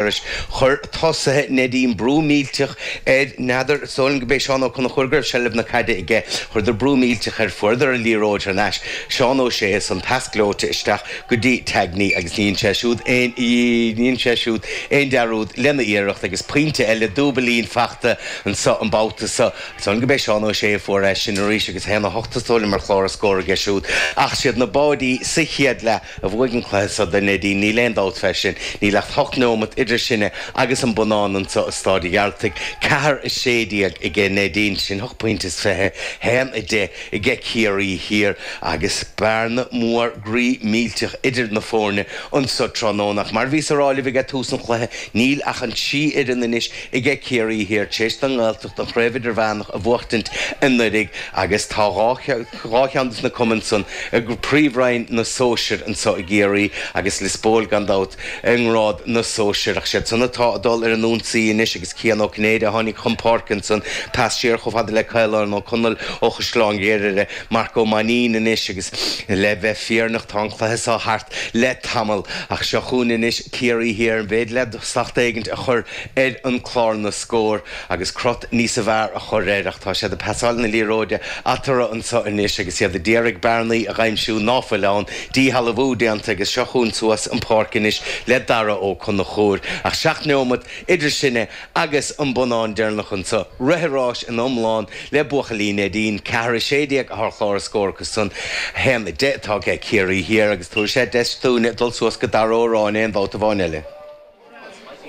Arís, chuir tosaithe Neidín brú millteach air. N'fheadar, is dóigh liom gurb é Seán Ó Conchúir go raibh seilbh na caide aige, chuireadar brú millteach air, fuaireadar an liathróid thar n-ais. Seán Ó Sé, an pas gleoite isteach go dtí Tangney agus níor dhein sé siúd aon, níor dhein sé siúd aon dearúd lena iarracht agus pointe eile, dúibilín, fachta anseo an babhta so. Is dóigh liom gurb é Seán Ó Sé a fuair é sin arís agus a haon a hocht is dóigh liom ar chlár an scór aige siúd. Ach is iad na báirí sa chéad leath. a bhuaigh an cluiche seo do Neidín, níl aon dabht fé sin. Níl ach ocht neomat idir sinne agus an bonnán anso i Stáid a' Ghearltaigh. Ceathair a sé déag aige Neidín, sin ocht bpoinnte is fiche haon a deich aige Ciarraí Thiar, agus bearna mhór groí millteach idir na foirne anso tráthnóna. Ach mar bhíos a rá libh aige tús an chluiche, níl ach an trí fhoireann anois aige Ciarraí Thiar, t'réis don nGaeltacht an Chraobh Idirmheánach a bhuachtaint anuiridh, agus tá dhá dhá cheann de na cumainn san i bpríomhroinn na sóisear anseo i gCiarraí agus Lios Póil gan dabht i ngrád na sóisear. Ach is iad san atá ag dul ar an ionsaí anois agus Cian Ó Cinnéide a tháinig chun páirce ansan pas siar chomh fada le Caolán Ó Conaill ó Chaisleán Ghriaire, Marc Ó Mainnín anois agus le bheith fírinneach tá an cluiche seo thart le tamall ach seo chugainn anois Ciarraí Thiar an mhéid le slacht éigint a chur ar chlár na scór. agus crot níos fearr a chur air, ach tá siad ag pasáil na liathróide eatorra anso anois agus iad a d'iarraidh bearnaí a dh'aimsiú ná fuil ann. Díshealbhú déanta agus seo chugainn suas an pháirc anois le Dara Ó Conchúir, ach seacht neomat idir sinne agus an bonnán deireanach anso. Rith ar áis ina iomlán le buachaillí Neidín. Ceathair a sé déag ar chlár an scór acu san. A haon a deich atá aige Ciarraí Thiar agus tabharfaidh sé deis dúinne dul suas go Dara Ó Ráinne aon bhabhta amháin eile.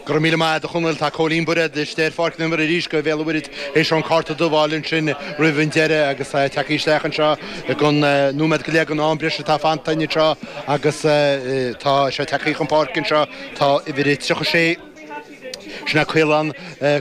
Go raibh míle maith agat a Chonaill. Tá Cóilín Bairéad ag teacht ar an bpáirc ar ndóigh arís do Bhéal an Mhuirthead tar éis an cárta dubh a fháil ansin roimh an deireadh agus tá siad ag tíocht isteach anseo aon nóiméad go leith den am breise atá fanta anseo agus tá sé ag tíocht chun páirce anseo. Tá uimhir a 36 Sin é Caolán,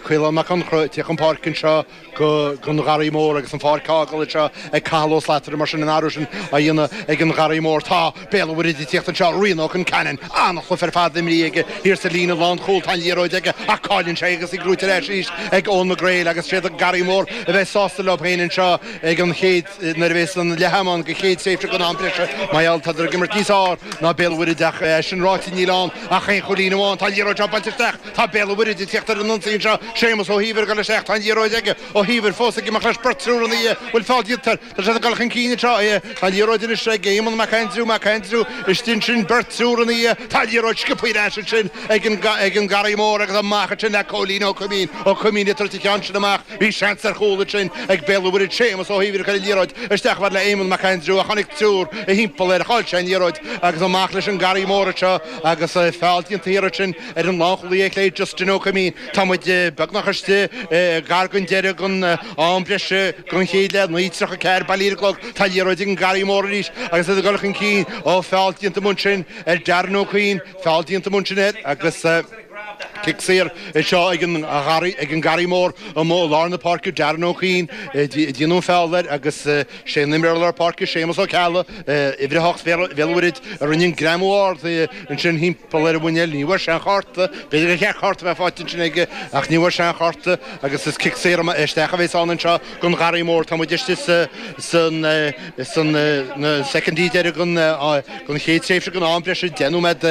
Caolán Mac Conchra, ag tíocht chun páirce anseo. ag an Gharraí Mór agus an pháirc á fhágáil anseo ag Cathal Ó Slataire mar sin an t-athrú sin á dhéanamh ag an Gharraí Mór. Tá Béal an Mhuirthead ag tíocht anseo, Ryan Ó Conceanainn, an-chluiche ar fad imrithe aige thiar sa líne lánchúil, tá an liathróid aige ach cailleann sé í agus í gnóite ar ais arís ag Eoin McGreal agus féadann an Garraí Mór a bheith sásta leo féin anseo ag an chéad Nuair a bhéas an leath am ann don chéad tréimhse den am breise mar gheall tádar ag imirt níos fearr ná Béal an Mhuirthid ach é sin ráite níl ann ach aon chúilín amháin. Tá an liathróid seo buailte isteach. Tá Béal an Mhuirthid ag tíocht ar an ionsaí anseo. Séamus Ó hÍobhair ag dul isteach. Tá an liathróid aige. Ó hÍobhair fós ag imeacht leis. Beirt triúr ina dhiaidh. Bhuail feall iad. Tá siad ag dul chun cinn anseo. Tá an liathróid anois ag Éamonn Mac Aindriú. Mac Aindriú istigh ansin. Beirt triúr ina dhiaidh. Tá an liathróid scioptha ar ais ansin ag an Garraí Mór agus amach ansin le Cóilín Ó Coimín. Ó Coimín ag tabhairt an ceann sin amach. Bhí seans ar chúl ansin ag Béal an Mhuirthead Séamus Ó hUidhir a chuir an liathróid isteach chomh fada le Éamonn Mac Aindriú a chonaic triúr thimpeall air. Chaill sé an liathróid agus amach leis an nGarraí Mór anseo agus feall déanta thiar ansin ar an lánchúlaí ar clé Justin Ó Coimín. Tá muid beagnach istigh gar don deireadh den am breise den chéad leath, 9:34 bailí ar an gclog. Tá an liathróid ag an nGarraí Mór arís agus iad ag dul chun cinn. Ó, feall déanta amuigh ansin ar Darren Ó Cuinn. Feall déanta amuigh ansin air agus. Cic saor é seo ag an nGarraí Mór amuigh i lár na páirce, Darren Ó Cuinn a ndearnadh an feall air agus sé an imreoir lár páirce, Séamus Ó Ceallaigh, uimhir a hocht Bhéal Mhuirthid, a rinne an greamú ard ansin thimpeall ar a mhuinéal. Ní bhfuair sé aon chárta, b'fhéidir go gceart cárta a bheith faighte ansin aige, ach ní bhfuair sé aon chárta agus is cic saor isteach a bhéas ann anseo. don Gharraí Mór. Tá muid istigh sna soicindí deiridh den chéad tréimhse den am breise, deich nóiméad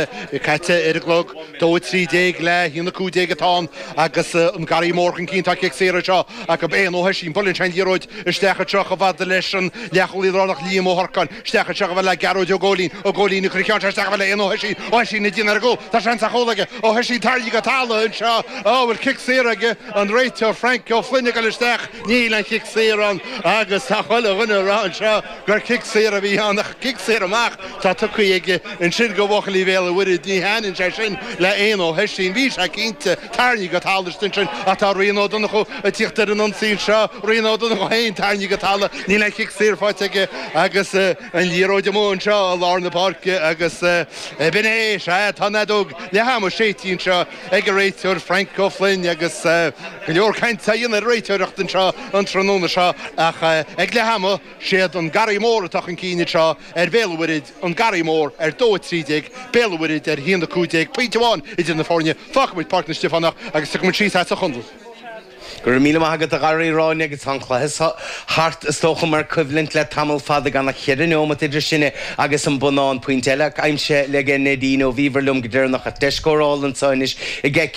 caite ar an gclog. Dó a trí déag le haon a cúig déag atá ann agus an Garraí Mór chun cinn. Tá cic saor anseo acu, Eoin Ó hOisín ag bualadh ansin liathróid isteach chomh fada leis an leathchúlaí lárnach Liam Ó hAnracháin. Isteach anseo chomh fada le Gearóid Ó Góilín. Ó Góilín ag cur an cheann seo isteach chomh fada le Eoin Ó hOisín. Ó Hoisín ag déanamh ar an gcúl. Tá seans ar chúl aige. Ó Hoisín tarraingthe go talamh anseo. An bhfuil cic saor aige an réiteoir Frank Ó Floinn ag dul isteach. Níl aon chic saor ann agus tá chuile dhuine ag rá anseo gur cic saor a bhí ann ach cic saor amach atá tugtha aige ansin go bhuachaillí Bhéal an Mhuirthead. Ní thaitníonn sé sin le Eoin Ó hOisín. Bhí sé cinnte tarraingthe go talamh ansin ach tá Rian Ó Donnchú ag tíocht ar an ionsaí anseo. Rian Ó Donnchú féin tarraingthe go talamh. Níl aon chic saor faighte aige agus an liathróid amuigh anseo i lár na páirce agus b'in é. Sea, tá an fheadóg leath ama séidte anseo ag an réiteoir Frank Ó Floinn agus go leor cainte á dhéanamh ar an réiteoireacht anseo an tráthnóna seo ach ag leath ama, siad an Garraí Mór atá chun cinn anseo ar Bhéal an Mhuirthead, An Garraí Mór ar dó a trí déag, Béal an Mhuirthead ar a haon a cúig déag. Pointe amháin idir na foirne, fágfaimid Páirc na Stiofánach agus tiocfaimid síos as an chontae. Go raibh míle maith agat a Ghráinne agus tá an cluiche seo thart is dócha mar coimhlint le tamall fada gan ach cheithre neomat idir sinne agus an bonnán pointe eile aimsithe ag Neidín ó bhíobhair liom go deireanach ach deis scórála anseo anois ag